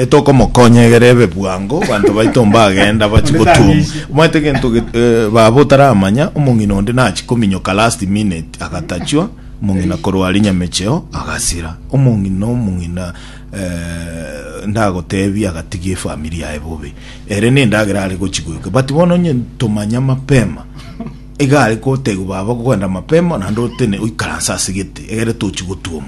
Tokomokonya egere ebe bwango, banto baito mbagenda bache gotuoma. Omanyete gento ge- eh, baba otaramanya, omong'ina onde nachi kominyoka last minute agatachwa, omong'ina korwa aria Nyamecheo agasira. Omong'ina omong'ina eh, ndagotebi agatigia efamiri yaye bobe. Ere nendagera are gochi goika. But bono onye tomanya mapema, iga are gotegwa baba kogenda mapema naende otene oikaranse ase gete egere tochi gotuoma.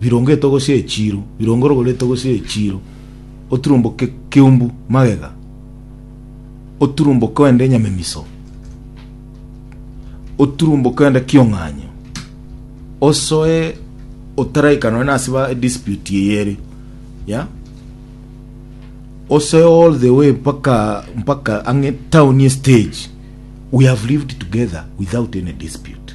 birongetwe gose echiiro, birongo rogoretwe gose echiiro, oturumboke kiumbu magega, oturumboke ende nyamemiso, oturumboke ende kiong'anyo, osoe otaraika nonye nase ba dispute eye ere ya osoe all the way mpaka mpaka ang'e town ye stage we have lived together without any dispute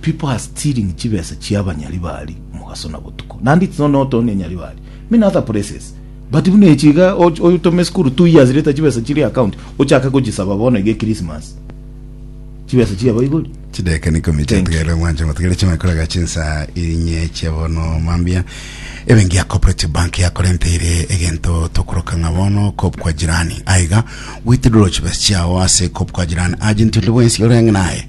People are stealing chibesa chia banyaribari omogaso na botuko. Naende it's not not only nyaribari. Many other places. But buna echi iga och- oyotoma esukuru two years later chibesa chiri account ochake gochisaba bono iga Christmas. Chibesa chia baibori. chideka nikomi Thank chiatigere mwanche motigere chimakoraga chinsa inye chia bono mambia ebenki ya cooperative bank yakorenteire egento tokoroka ng'a bono kop kwa jirani aiga withdraw chibesa chiao ase kop kwa jirani agent onde bwensi ore ang'e naye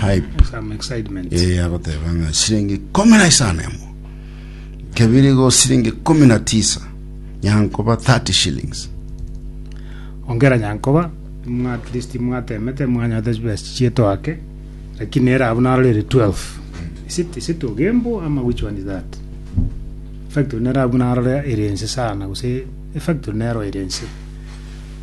hype Some excitement. ee agoteba ng'a siringi ikomi na isano emo kebiri go siringi ikomi na tisa nyankoba 30 shillings Ongera nyankoba, mwa at least mwatemete mwanyorete chibesa chichietwa ake, lakini era abwo narorire 12. Is it, is it Ogembo ama which one is that? Factory nero abwo narore ere ense sana, gose factory nero ere ense.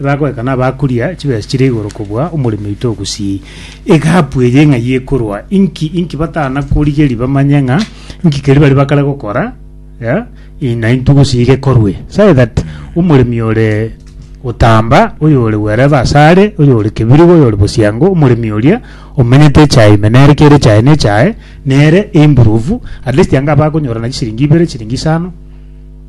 Ebagoeka nabakuria chibesa chire igoro kobua omoremi oito ogusii. Egapu eye ng'ai ekorwa? Inki inki batana korigeri bamanye ng'a inki keri bari bakare gokora eh, in- na intwe gusii gekorwe. Sae that omoremi ore gotamba, oyo ore wherever asare, oyo ore kebirigo, oyo ore bosiango, omoremi oria omenyete echae ime nere kere echae nechae nere improve at least anga abakonyorana chisiringi ibere, chisiringi isano.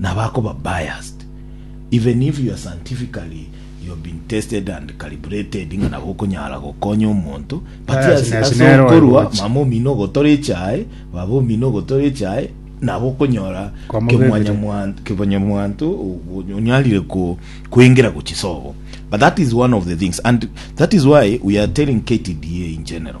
nabakoba biased even if you are scientifically you have been tested and calibrated ng'a nabo okonyara gokonya omonto but Biasness as, as nero ero okorua gocha. mama omino ogotora echae baba omino ogotora echae nabo okonyora Kwamo kemwanya bebire. mwanto kebanya mwanto onyarire ko kwengera gochisobo but that is one of the things and that is why we are telling KTDA in general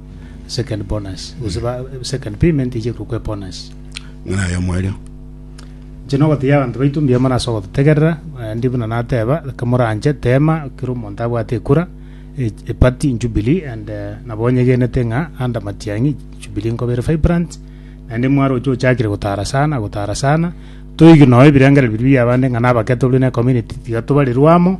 second bonus gose ba second payment eche korokwa ebonus Ng'ana aye omoerio. Inche nogotegia abanto baito mbuya mono ase ogototegerera eh, ndi buna nateba reka moranche tema kera omonto abwate ekura e- epati jubilee and eh, nabo onyegenete ng'a ande matiang'i jubilee nkoba ere vibrant naende mwaroche ochakire gotara sana gotara sana toigwe nonye ebirengererio biria bia abande ng'a nabakete buna ecommunity tiga tobarerwe amo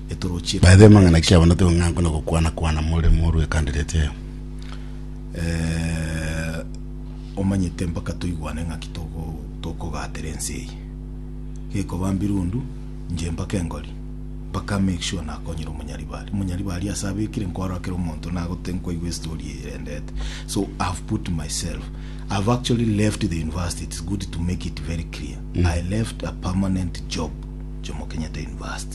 By the way mang'ana ki abanto tigo ng'anko na gokwana kwana more morue ekandireti eye? Eh, omanyete mpaka toigwane ng'aki togo tokogatera ense eye. Gekoba mbirundu, nche mpaka engori, mpaka make sure nakonyire omonyaribari. Omonyaribari ase abekire nkwara kera omonto nagote nkoigwe estory eye erendete. So I have put myself. I have actually left the university. It's good to make it very clear. I left a permanent job Jomo Kenyatta University.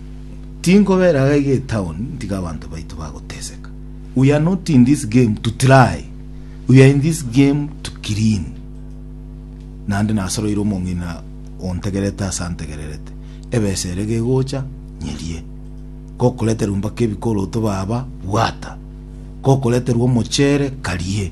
Tinkobeera iga iga etown ntiga abanto baito bagoteseka. We are not in this game to try. We are in this game to clean. Naende nasoroire omong'ina ontegerete ase antegererete. Ebesa ere gegocha nyerie. Gokoreterwa mbaka ebikoroto baba bwata. Gokoreterwa omochere karie.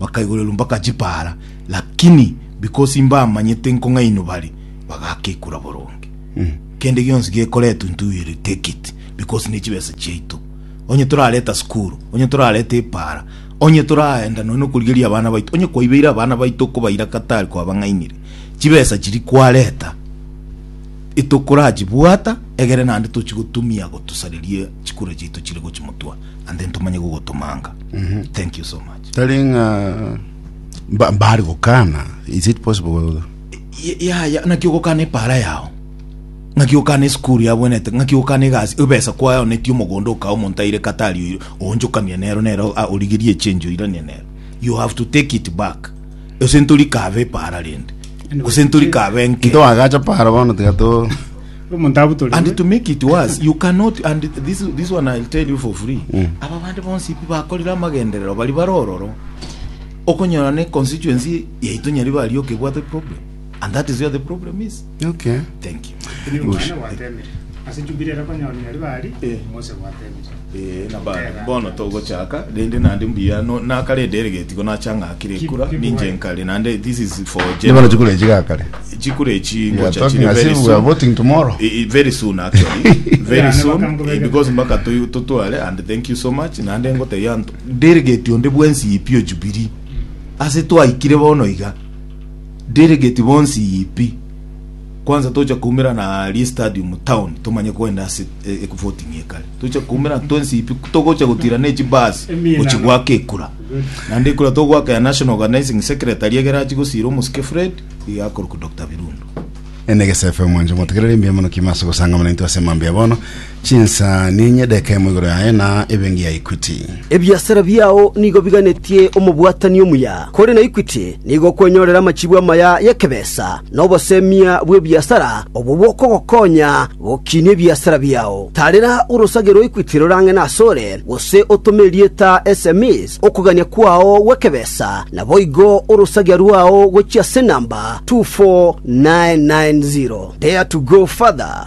bakaigorerwa mpaka chipaara, lakini because mbamanyete nkong'ainwa bare, bagakekura boronge. Kende gionsi gekoretwa intwe we will take it because ne chibesa chiaito. Onye torareta sukuru, onye torareta epaara, onye toraenda nonya nokorigeria abana baito, onye kwaibeire abana baito okobaira Qatar kwabang'ainire, chibesa chiria kwareta etokorachibwata egere naende tochigotumia gotusareria chikura chiaito chire gochimotwa. and then tumanye gogotomanga thank you so much tari ng'a mba- mbari gokana is it possible Y- yaya naki ogokana epara yao ng'aki ogokana esukuru yabwenete ng'aki ogokana egasi ebesa kwayonetie omogondo okao omonto aire katari oyo oonchokamia nero nero ah, origerie echange oiranie nero you have to take it back ase ntori kabe epara rende gose ntori kabe enke ntwagacha para bono tiga to Omonto abutorigwe. And to make it worse, you cannot, and this, this one I'll tell you for free. Mm. Aba bande bonsi pi bakorire amagenderero bari bare ororo. Okonyora ne constituency yaito nyari bari okebwate problem. And that is where the problem is. Okay. Thank you. Ase Jubilee era konyora nyari bari, Eh. Mose gwate. Ee, nabande, bono togochaka rende naende mbuya no- nakarende ere getigo nachang'akire ekura ninche nkare naende this is for Nibona general. chikura echi gakare. chikura echi We are ngocha talking chire as very if we are soon voting tomorrow. Eh, eh, very soon actually very Yeah, soon nabaka mkubeke. eh, because mpaka tu- tutware and thank you so much naende ngoteya anto delegate onde bwensi yipi ojubiri ase twaikire bono iga delegate bonsi yipi Kwansa tocha koumera na rie stadium town tomanye koenda ase e- e- voting ekare tocha koumera twensi ipi togocha gotira ne chibasi gochi gwaka ekura naende ekura togwaka ya national organizing secretary egere achi gosira omosike fred iga akoruku dr birundu Ene gesefe mwancho motegerere mbuya mono kima ase gosangamana intwe ase mambia bono Chinsa ninye edekemo igoro yaye na ebenki ya Equity. Ebiasara biao nigo biganetie omobwatani omuya, kore na Equity nigo okwenyorera amachibu amaya y'ekebesa na obosemia bw'ebiasara obwo bokogokonya gokinia ebiasara biao. Tarera orosage rwa Equity rorang'ene asore, gose otome erieta sms okogania kwao gw'ekebesa, naboigo orosagia rwao gochia ase enamba 24990. Dare to go further.